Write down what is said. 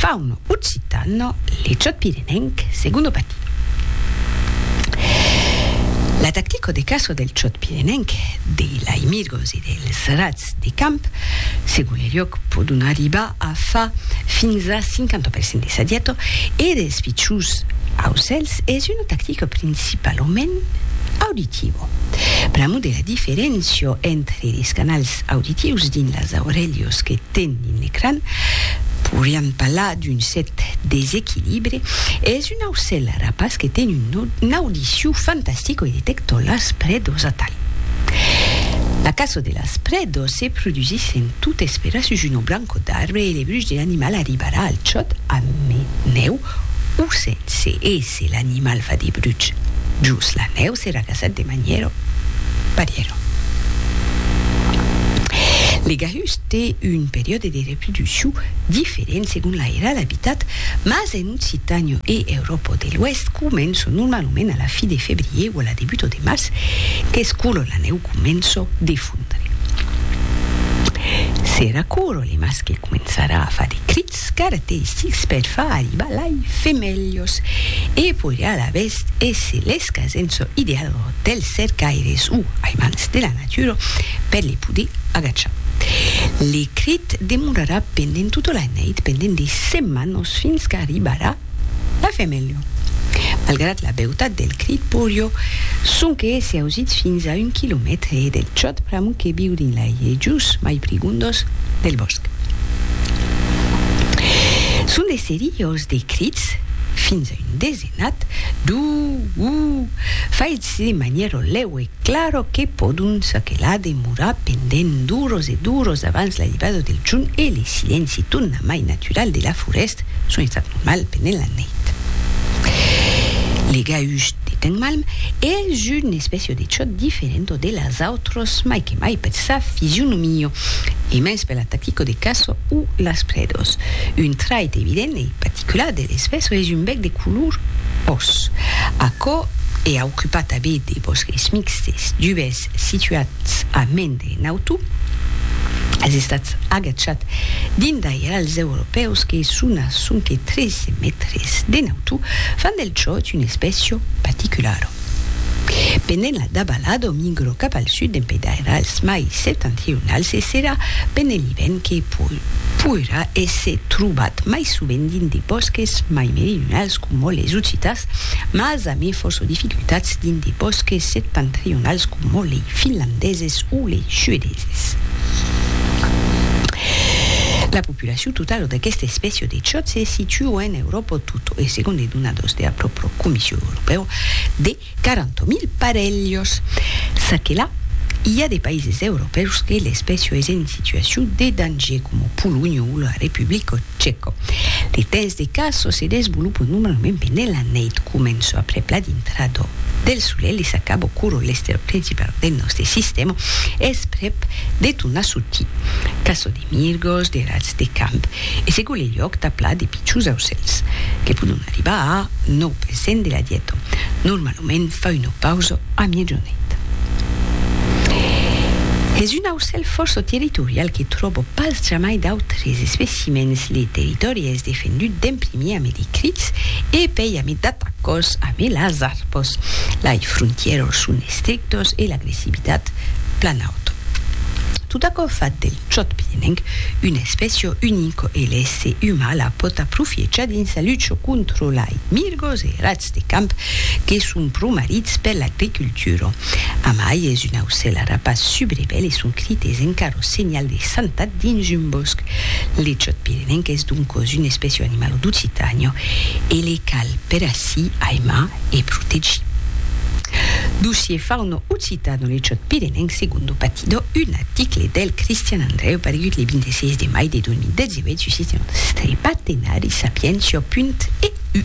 Faun occitan, leciot pirenenc, segundo pati. La tactico de caço del ciot pirenenc, de laimirgos e dels rats de camp, segon le lloc pòdon arribar a far fins a 50 per cent de sadiato e dels pichons aucèls es una tactico principalament auditiva. Pr'amor de la diferéncia entre les canals auditius dins las aurelhos que ten dins l'ecran, poiriam parlar d'un cèrt desequilibre, es un aucèl rapaç que ten un audiciu fantastic oi detecto las predos atal. La caço de las predos se produsís en tot esperar sus un obranco d'arbre e le bruch de l'animal arribarà al chòt a menèu O sènh se èsse l'animal fa de bruch jos la nèu s'èra gasat de manièra parièra. Le gahús té un periòde de reproduccion diferent segon l'airal e l'abitat, mas en Occitània e Euròpa de l'Oèst comença normalament a la fi de febrièr o a la debuta de març, qu'es quora la nèu comença de fondre. Serà quora le mascle començarà a far de crits. Scarte six per far arribar lai femelhos e podriá alavetz èsser les qu'asentso ideal dels cercaires o aimants de la natura per les poder agachar. L'ecrit demorarà pendent tota la neit, pendent de setmanos, fins qu'arribarà La femelha, malgrat la beutat del crit porio, sonque se ausit fins a un quilomètre del chòt pr'amor que viu dins lai ejos mai prigondos del bòsc. Son de seriós de crits, fins a un desenat, du, u, faits de manièro lèu e claro que pòdon çaquelà demorar pendent d'oros e d'oros abans l'aivada del jorn e le silenci tornamai natural de la forèsta, Son estat normal pendent la neit. Legaus de temps malm, es un espècia de chòt diferento de las autros, mai que mai per sa fisionomia, e mens per la tactica de caça o las predas. Un trait evident e particular de l'espècia es un bèc de color ros. Aquò e aucupa tanben de bòsques mixtes, dubes situats a mens de nautu, es estat agachat dins d'airals europèus que son a sonque 13 mètres de nautu, fan del chòt un espècio paticulara. Pendent la davalada migra cap al sud dempe d'airals mai septentrionals e serà pendent l'ivèrn que poirà èsser trobat mai sovent dins de bòsques mai meridionals coma les Ocitàs, mas Damé fòrça dificultats dins de bòsques septentrionals coma lei finlandeses o lei suedeses. La populacion totala d'aquesta espècia de chòt se situa en Euròpa tota e segon de donadors de la pròpra Comission Europèa de 40.000 parelhs. Ça que la, i a de paises europèus que l'espècia es en situacion de danger coma Polonha o la Republica Chèco. Li tens de caso se desvolopo normalment pendent la nèit, començo aprèp la dintrado del solelh e s'acabo curo l'estero principau del nòste sistèma, es prèp de tornar sortir. Caso de mirgos, de rats de camp e se gole lhòc tà plat de pichons aucèls, que pòdon arribar a 9 per cent de la dieta. Normalament. moment fa una pausa a miejonit. Es un aucèl fòrça territorial que tròba pas jamai d'autres especimèns le territòri es defendut d'en primier ame de crics e pei ame d'atacors ame las arpos lai frontièros son estrictos e l'agressivitat plan auta tot aquò fa del chòt pienenc una espècia unica e l'èsser umà la pòt aprofiechar dins sa lucha contra lai mirgos e rats de camp que son pro marits per l'agricultura. Amai es un aucèl arapas subrebèl e son crit es encara senhal de santat dins un bòsc. L'echòt pirenenc es doncòs un espècia animala d'Occitània e le cal per ací aimar e protegir. Dossier Fauna occitana L'echòt pirenenc Segundo Patidor Un article del Cristian Andrèu paregut le 26 de mai de 2018 sus Sistèma Strepatenari Sapientia. Eu.